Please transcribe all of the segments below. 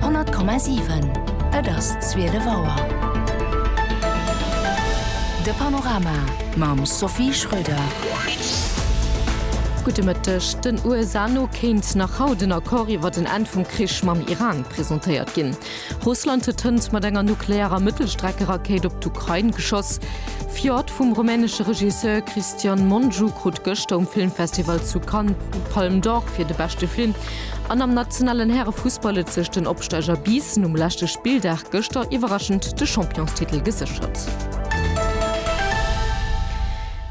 100,7 Et ass zwielef Auer. De Panorama mam Sophie Schröder. Gudde Mëtteg. Den USA no kéint nach haut en Accord iwwer den Enn vum Krich mam Iran presentéiert ginn. Russland huet hënt mat enger nuklearer Mëttelstreckerakéit op d'Ukrain geschoss. Fjord vum rumänesche Regisseur Cristian Mungiu krut gëschter um Filmfestival zu Cannes d'Palme d'Or fir de beschte Film. An am nationalen Härefussball huet sech den Opsteiger Biissen um leschte Spilldag gëschter iwwerraschend de Championstitel geséchert.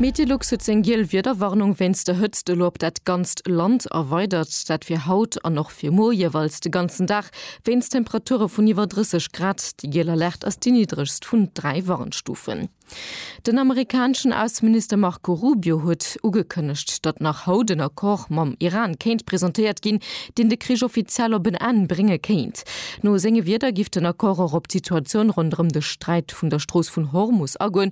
Meteolux huet seng giel Wiederwarnung wéinst der Hëtzt elo op dat ganzt Land erweidert. Dat fir haut an och fir muer jeeweils de ganzen Dag. Wéinst Temperature vun iwwer 30 Grad. Déi giel Alerte ass déi niddregst vun dräi Warnstufen. Den amerikaneschen Ausseminister Marco Rubio huet ugekënnegt, datt nach haut en Accord mam Iran kéint presentéiert ginn, deen de Krich offiziell op en Enn brénge kéint. No senge Wierder giff den Accord och op d'Situatioun ronderëm de Sträit vun der Strooss vun Hormus agoen,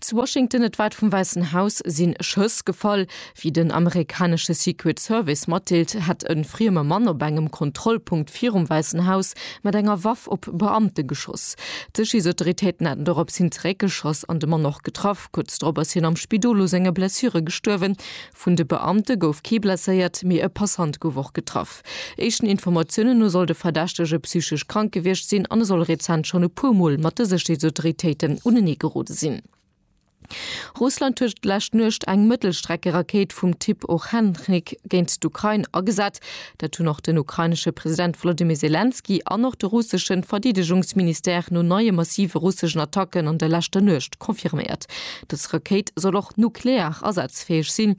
Zu Washington, et war d'vum Wäissen Haus, si Schëss gefall. Wéi den amerikanesche Secret Service matdeelt, hätt e frieme Mann op engem Kontrollpunkt virum Wäissen Haus mat enger Waff op Beamte geschoss. D'Sécherheetsautoritéiten hätten dorops hin zeréckgeschoss an de Mann och getraff. Kuerz drop ass hien am Spidol u senge Blessure gestuerwen. Vun de Beamte gouf kee blesséiert, mee e Passant gouf och getraff. Éischten Informatiounen no soll de Verdächtege psychesch krank gewiescht sinn an e soll rezent schonn e puer Mol mat de Sécherheetsautoritéiten unenee gerode sinn. Russland huet d'lescht Nuecht eng Mëttelstreckerakéit vum Typ Ochencnik géint d'Ukrain agesat. Dat hunn och den ukrainesche President Wolodymyr Selenskyj an och de russesche Verdeedegungsministère no neie massive russeschen Attacken an der leschter Nuecht confirméiert. Dës Rakéit soll och nuklear asazfäeg sinn.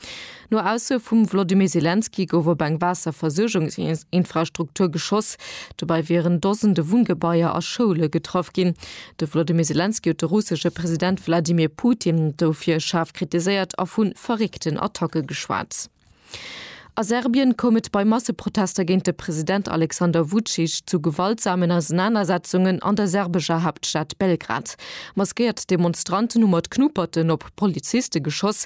No Ausso vum Wlodymyr Selenskyj gouf op eng Waasserversuergungsinfrastruktur geschoss. Dobäi wieren Dosende Wunngebaier a Schoule getraff ginn. De Wlodymyr Selenskyj huet de russesche President Wladimir Putin dofir schaarf kritiséiert a vu verréckten Attacke geschwat. A Serbien koum et bei Masseprotester géint de President Alexander Vucic zu gewaltsamen Ausenanersetzungen an der serbescher Haaptstad Belgrad. Maskéiert Demonstranten hu mat Knuperten op Poliziste geschoss,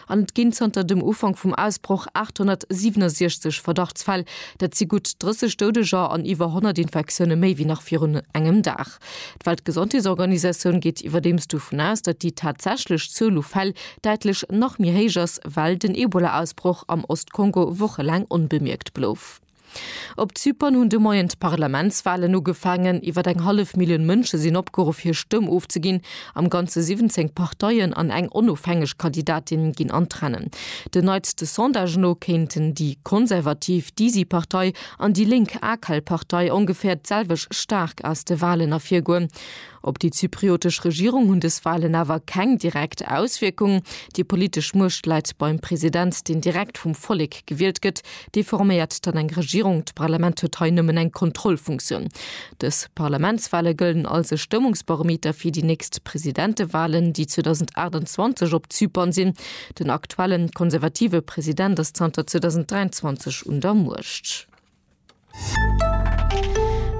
An et ginn zanter dem Ufank vum Ausbroch 867 Verdachtsfäll. Dat si gutt 30 Doudeger an iwwer 100 Infektioune méi wéi nach virun engem Dag. D'Weltgesondheetsorganisatioun geet iwwerdeems dovun aus, datt déi tatsächlech Zuel u Fäll däitlech nach méi héich ass, well den Ebola-Ausbroch am Ost-Kongo wochelaang onbemierkt blouf. Op Zypern hunn de Moien d'Parlamentswalen ugefaangen. Iwwer eng hallef Millioun Mënsche sinn opgeruff hir Stëmm ofzeginn. Am Ganze 17 Parteien an eng onofhängeg Kandidatin ginn an d'Rennen. Den neitste Sondage no kéinten déi konservativ Disi-Partei an déi lénk Akel-Partei ongeféier d'selwecht staark aus de Walen ervirgoen. Op déi zypriotesch Regierung hunn dës Walen awer keng direkt Auswierkung. Déi politesch Muecht läit beim President, deen direkt vum Vollek gewielt gëtt. Dee forméiert dann eng Regierung. D'Parlament huet hei nëmmen eng Kontrollfunktioun. Dës Parlamentswale gëllen als e Stëmmungsbarometer fir déi nächst Presidentewalen, déi 2028 op Zypern sinn. Den aktuelle konservative President ass zanter 2023 un der Muecht.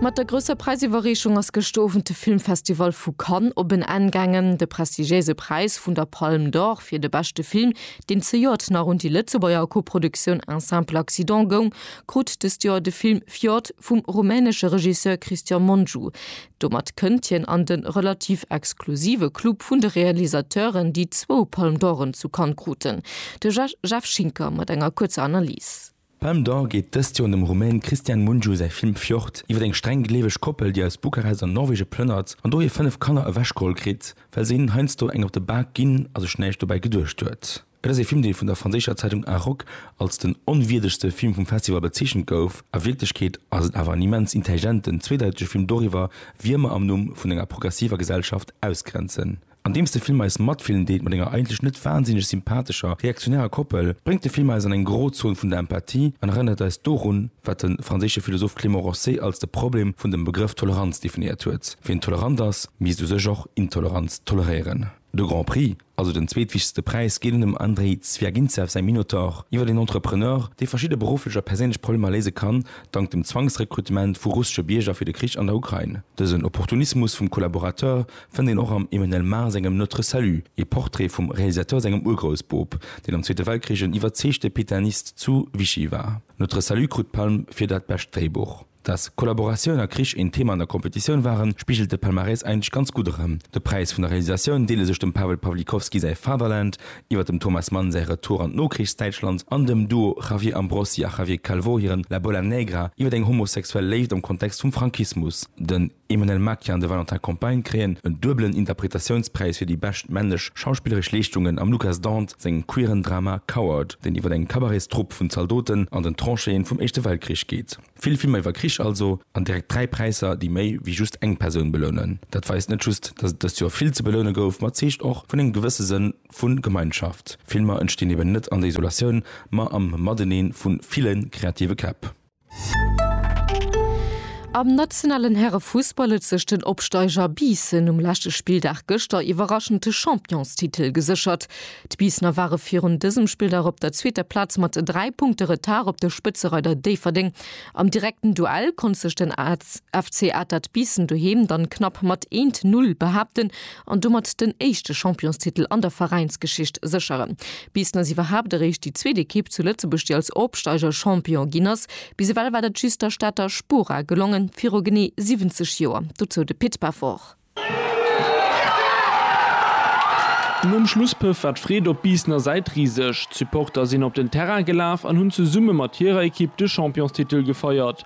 Mat der grousser Präisiwwerreechung ass gëschter Owend de Filmfestival vu Cannes op en Enn gaangen. De prestigiéise Präis vun der Palme d'Or fir de beschte Film, deen zejoert nach un déi Lëtzebuerger Koproduktioun Un simple accident goung, krut dëst Joer de Film Fjord vum rumänesche Regisseur Cristian Mungiu. Domat kënnt hien an de relativ exklusive Club vun de Realisateuren, déi zwou Palme d'Oren zu Cannes kruten. De Jeff Schinker mat enger kuerzer Analyse. D'Palme d'Or geet dëst Joer un dem Rumän Cristian Mungiu säi Film Fjord iwwer eng streng gleeweg Koppel, déi aus Bukarest an Norwege plënnert an do hir fënnef Kanner ewechgeholl kritt, well se hinnen heiansdo eng op de Bak ginn a sech näischt dobäi geduecht huet. Et ass ee Film, dee vun der franséischer Zeitung Arok als den onwierdegste Film vum Festival bezeechent gouf. A Wierklechkeet ass et awer en immens intelligenten, zweedeitege Film doriwwer, wien mer am Numm vun enger progressiver Gesellschaft ausgrenzen. Andeems de Film eis matfillen deet mat enger eigentlech net wansinneg sympathescher reaktionärer Koppel, bréngt de Film eis an eng Grozon vun der Empathie an erënnert eis dorun, wat de franséische Philosoph Clément Rosset als de Problem vun dem Begrëff Toleranz definéiert huet, Wien tolerant ass, misst u sech och Intoleranz toleréieren. De Grand Prix, also den zweetwichtegste Präis, geet un dem Andrei Zwiagintsev säi Minotaur iwwer een Entrepreneur, dee verschidde berufflech a perséinlech Problemer léise kann, dank dem Zwangsrekrutement vu russesche Bierger fir de Krich an der Ukrain. Dësen Opportunismus vum Collaborateur fënnt een och am Emmanuel Mar sengem Notre Salut ee Portrait vum Realisateur sengem Urgroussboob, deen am Zweete Weltkrich en iwwerzeegte Pitanist zu Vichy war. Notre Salut krut d'Palm fir dat bescht Dréibuch. Dass Kollaboratioun a Krich een Thema an der Competitioun waren, spigelt de Palmarès eigentlech ganz gutt erëm. De Präis vun der Realisatioun deele sech dem Pawel Pawlikowski säi Fatherland iwwer dem Thomas Mann säi Retour an d'Nokrichsdäitschland an dem Duo Javier Ambrosi a Javier Calvo hiren La Bola Negra iwwer eng homosexuell Léift am Kontext vum Frankismus. Den. Emmanuelle Maquin an de Valentin Compagne kréien en duebelen Interpretatiounspräis fir déi bescht männlech schauspilleresch Leeschtungen am Lucas Dant sengem queeren Drama Coward, deen iwwer eng Cabaretstrupp vun Zaldoten an den Tranchéen vum Éischte Weltkrich geet. Vill Filmer iwwer Krich also, an direkt dräi Präisser, déi méi wéi just eng Persoun belounen. Dat weist net just, dass et dëst Joer vill ze beloune gouf, ma zeegt och vun engem gewësse Sënn vu Gemeinschaft. Filmer entstinn eben net an der Isolatioun, ma am Mateneen vu ville kreative Käpp. Am nationalen Herrefussball huet sech den Opsteiger Biissen um leschte Spilldag gëschter iwwerraschend de Championstitel geséchert. D'Biissener ware virun dësem Spilldag op der zweeter Plaz mat 3 Punkte Retard op de Spëtzereider Déifferdeng. Am direkten Duell konnt sech den FC Atert Biissen doheem dann knapp mat 1, 0 behaapten, an domat den éischte Championstitel an der Veräinsgeschicht sécheren. Bis dass iwwerhaapt eréischt déi zweet Ekipp zu Lëtzebuerg, déi als Opsteiger Champion ginn ass. Bis ewell war dat just der Stater Spora gelongen, viru genee 70 Joer. Dozou de Pit Pefort. Nom Schlusspëff war d'Freed op Biissener Säit riseg. D'Supporter sinn op den Terrain gelaf an hunn zesumme mat hirer Ekipp de Championstitel gefeiert.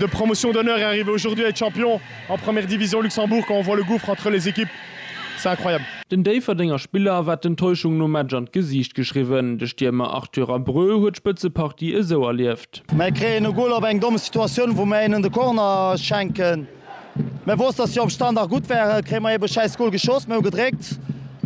De Promotion d'honneur est arrivé aujourd'hui à être champion en première division Luxembourg quand on voit le gouffre entre les équipes c'est incroyable. Den Déifferdenger Spiller war d'Enttäuschung nom Match an d'Gesiicht geschriwwen. De Stiermer Arthur Abreu huet d'Spëtzepartie esou erlieft. Mär kréien e Goal op eng domm Situatioun wou mär hinnen de Corner schenken. Mir woussten, dass si op Standard gutt waren. Kréie mer eebe e schäiss Gol geschoss. Mir hu gedréckt.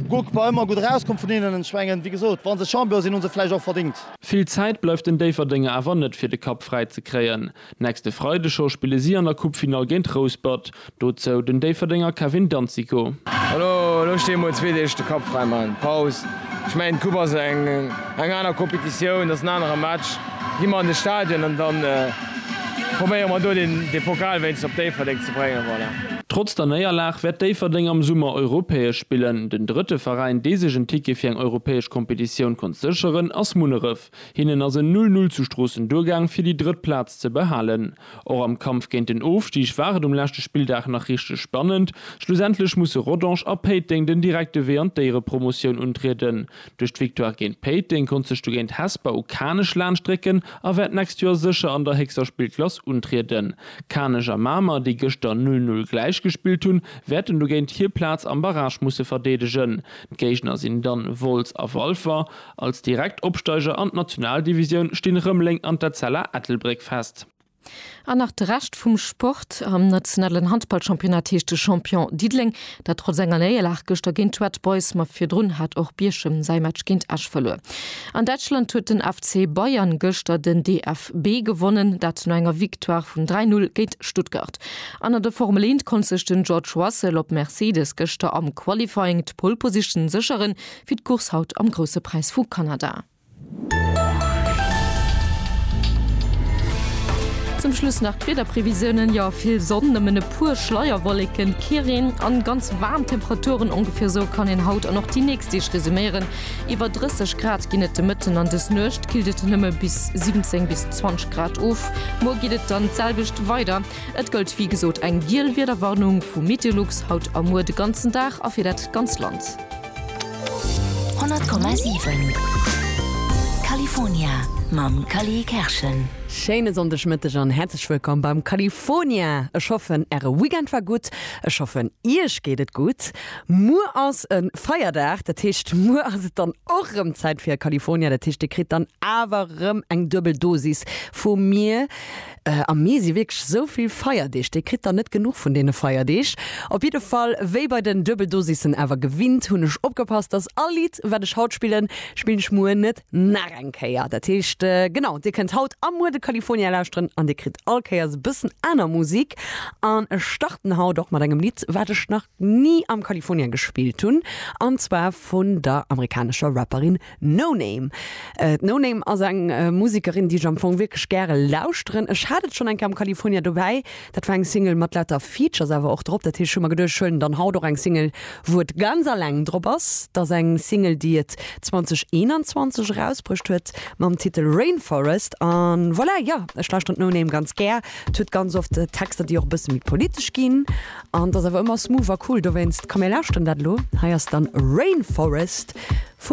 Guck, war ëmmer gutt erauskomm vun hinnen. Ech mengen, wéi gesot, wa se Champion sinn, hu se et vläicht och verdéngt. Vill Zäit bleift den Déifferdenger awer net fir de Kapp fräi ze kréien. Nächste Freide scho spille si an der Coupefinall géint Rouspert. Dozou den Déifferdenger Kevin Danzico. Elo sti mol zwee Deeg de Kapp fräi, maachen Paus. Ech mengen d'Coupe ass eng. Eng aner Competitioun, ass en anere Match. Gi mer an de Stadion an da probéiere mer do de Pokal wéinst op Déifferdeng ze bréngen. Voilà. Trotz der Néierlag wäert Déifferdeng am Summer europäesch spillen. Den drëtte Veräin, dee sech en Ticket fir eng europäesch Competitioun konnt sécheren, ass Munneref. Hinnen ass en Null Null zu Stroossen duergaang, fir déi drëtt Plaz ze behalen. Och am Kampf géint den Ofstig war et um leschte Spilldag nach richteg spannend. Schlussendlech musse Rodange a Péiteng den direkte Wee an d'Éierepromotioun untrieden. Duerch d'Victoire géint Péiteng konnt sech dogéint Hesper u Kanech laanschtrécken a wäert d'nächst Joer sécher an der héchster Spillklass untrieden. Kanech a Mamer, déi gëschter 'Null Null Gläich' gespillt hunn, wäerten dogéint hir Plaz am Barrage musse verdeedegen. D'Géigner sinn dann Wolz a Walfer. Als direkt Opsteiger an d'Nationaldivisioun stinn Rëmeleng an d'Etzella Ettelbréck fest. An nach de Rescht vum Sport, Am nationalen Handballchampionnat heescht de Champion Diddeleng, dat trotz enger Néierlag gëschter géint d'Red Boys, ma virdrun hat och Bierchem säi Match géint Esch verluer. An Däitschland huet den FC Bayern gëschter den DFB gewonnen, dat no enger Victoire vun 3, 0 géint Stuttgart. An an der Formel 1 konnt sech den George Russell op Mercedes gëschter am Qualifying d'Pole Position sécheren, fir d'Course haut am Grousse Präis vu Kanada. Zum Schluss nach d'Wiederprevisiounen, jo vill Sonn, nëmmen e puer Schleierwolleken, kee Reen an ganz waarm Temperaturen. Ongefir esou kann een haut an och déi nächst Deeg resuméieren. Iwwer 30 Grad ginn et de Mëtten an dës Nuecht killt et nëmme bis 17 bis 20 Grad of. Muer geet et dann d'selwecht weider. Et gëllt wéi gesot eng giel Wiederwarnung vu Meteolux haut a muer de ganzen Dag a fir dat ganz Land. 100,7 California mam Cally Kerschen. Schéine Sonndegmëtteg an häerzlech wëllkomm beim California. Ech hoffen Äre Weekend war gutt, ech hoffen Iech geet et gutt. Muer ass e Feierdag, dat heescht muer ass et dann och rëm Zäit fir California. Dat heescht Dir kritt dann awer rëm eng duebel Dosis vu mir. Am Mee si wierklech esou vill Feierdeeg, dee kritt dann net genuch vun deene Feierdeeg. Op jidde Fall, wéi bei den Duebeldosissen awer gewinnt, hunn ech opgepasst, dass all Lidd, wat ech haut spillen, spillen ech muer net nach eng Kéier. Dat heescht, genau, dir kënnt haut a muer de California lauschteren an dir kritt all Kéiers e bëssen aner Musik. An ech starten haut och mat engem Lidd, wat ech nach ni am California gespillt hunn, an zwar vun der amerikanescher Rapperin Noname. D'Noname ass eng Musekerin, déi ech am Fong wierklech gäre lauschteren. Ech hat et schonn eng Kéier am California dobäi. Dat war eng Single mat lauter Features awer och drop. Dat heescht, ech hu mer geduecht, ech huelen dann haut och eng Single, wou et ganz aleng drop ass. Et ass eng Single, déi et 2021 erausbruecht huet mam Titel Rainforest. A voilà, jo, ech lauschteren d'Noname ganz gär. Et huet ganz oft Texter, déi och e bësse méi politesch ginn. An et ass awer ëmmer smooth a cool dowéinst. Komm mir lauschteren dat elo. Hei ass dann Rainforest vum.